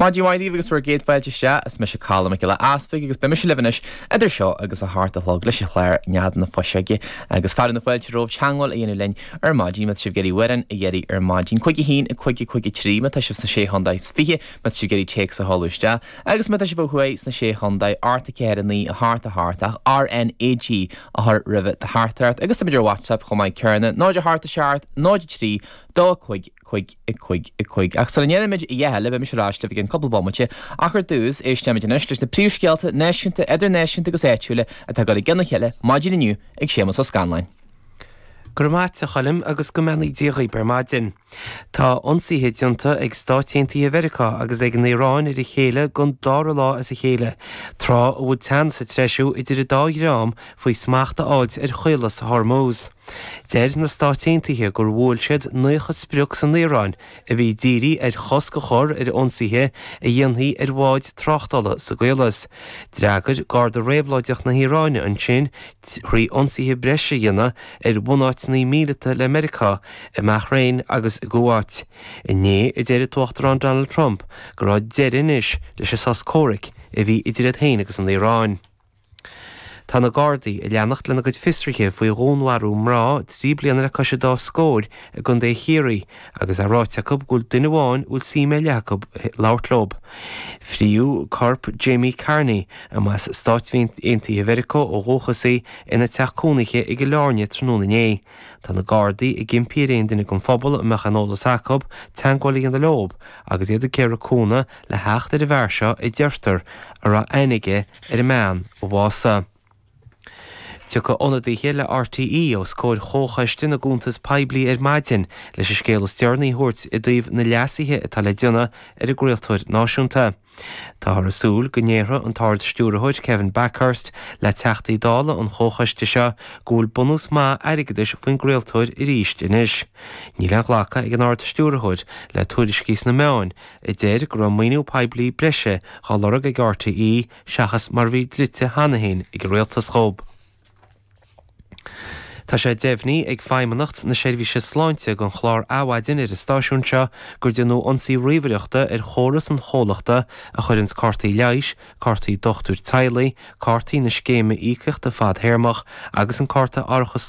Maidin mhaith daoibh agus bhur gcéad fáilte isteach. Is mise Colm Mac Giolla Easpaig agus beidh mise libh anois idir seo agus a hocht a chlog leis an chlár Nead na Fuiseoige agus fearadh na fáilte romhaibh teagmháil a dhéanamh linn ar maidin má tá sibh ag iarraidh amhrán a dh'iarraidh ar maidin, cúig a haon, cúig, cúig a trí má tá sibh sna Sé Chontae is Fiche, má tá sibh ag iarraidh téacs a sheoladh isteach agus má tá sibh ó thuaidh sna Sé Chontae, ocht a ceathair, a naoi, a hocht, a hocht, ach RNAG a chur roimh do theachtaireacht agus táimid ar WhatsApp chomh maith céanna, 0 a hocht a seacht, 0 a trí, dó a cúig, cúig, a cúig, a cúig, ach sula ndéanfaimid a dhath eile beidh mise ar ais libh i gcionn cúpla bomaite, ach ar dtús, éisteimid anois leis na príomhscéalta náisiúnta, idirnáisiúnta agus áitiúila atá curtha i gcionn a chéile maidin inniu ag Séamus Ó Scanláin. Go raibh maith a't, a Choilm, agus go mbeannaí Dia dhaoib ar maidin. Tá ionsaithe déanta ag Stáit Aontaithe Mheiriceá agus ag an Iaráin ar a chéile don dára lá as a chéile, tráth a bhfuil teannas ag treisiú idir an dá dhream faoi smacht a fháilt ar Chaolas Hormuz. Deir na Stáit Aontaithe gur bhuail siad 90 sprioc san Iaráin a bhí dírithe ar chosc a chur ar ionsaithe a dhéanfaí ar bháid tráchtála sa gCaolas. D'fhreagair Garda Réabhlóideach na hIaráine ansin trí ionsaithe breise a dhéanamh ar bhunáiteanna míleata le Meiriceá i mBahrain agus i gCuáit. Inné a deir an tUachtarán Donald Trump go raibh deireadh anois leis an sos comhraic a bhí idir iad féin agus an Iaráin. Tá na Gardaí ag leanacht lena gcuid fiosruithe faoi dhúnmharú mná trí bliana le cois an dá scór i gContae Chiarraí agus é ráite acu go bhfuil duine amháin a bhfuil suim ar leith acu labhairt leo. Frítheadh corp Jamie Carney, a mba as Stáit Aontaithe Mheiriceá ó dhúchas í, ina teach cónaithe i gCill Airne tráthnóna inné. Tá na Gardaí ag impí ar aon duine den phobal a mbeadh aon eolas acu teagmháil a dhéanamh leo agus iad ag iarraidh cúnamh le theacht ar an bhfear seo a deirtear a raibh aithne aige ar an mbean a bhásaigh. Tiocfaidh ionadaithe le RTÉ os comhair Chomhchoiste na gCuntas Poiblí ar maidin leis an scéal is deireanaí a thabhairt i dtaobh na leasuithe atá le déanamh ar an gcraoltóir náisiúnta. Táthar ag súil go ndéarfaidh an tArd-Stiúrthóir, Kevin Bakhurst, le Teachtaí Dála an Chomhchoiste seo go bhfuil bunús maith airgeadais faoin gcraoltóir arís anois. Níl aon ghlacadh ag an Ard-Stiúrthóir le tuairiscí sna meáin, a deir go raibh maoiniú poiblí breise dhá lorg ag RTÉ seachas mar a bhí dlite cheana féin ag an Rialtas dhóib. Tá sé deimhnithe ag Feidhmeannacht na Seirbhíse Sláinte don chlár Adhmhaidin ar an stáisiún seo gur déanadh ionsaí ríomhaireachta ar chóras an chomhlachta a chuireanns cártaí leighis, cártaí dochtúir teaghlaigh, cártaí na scéime íocaíochta fadthéarmach agus an cárta árachas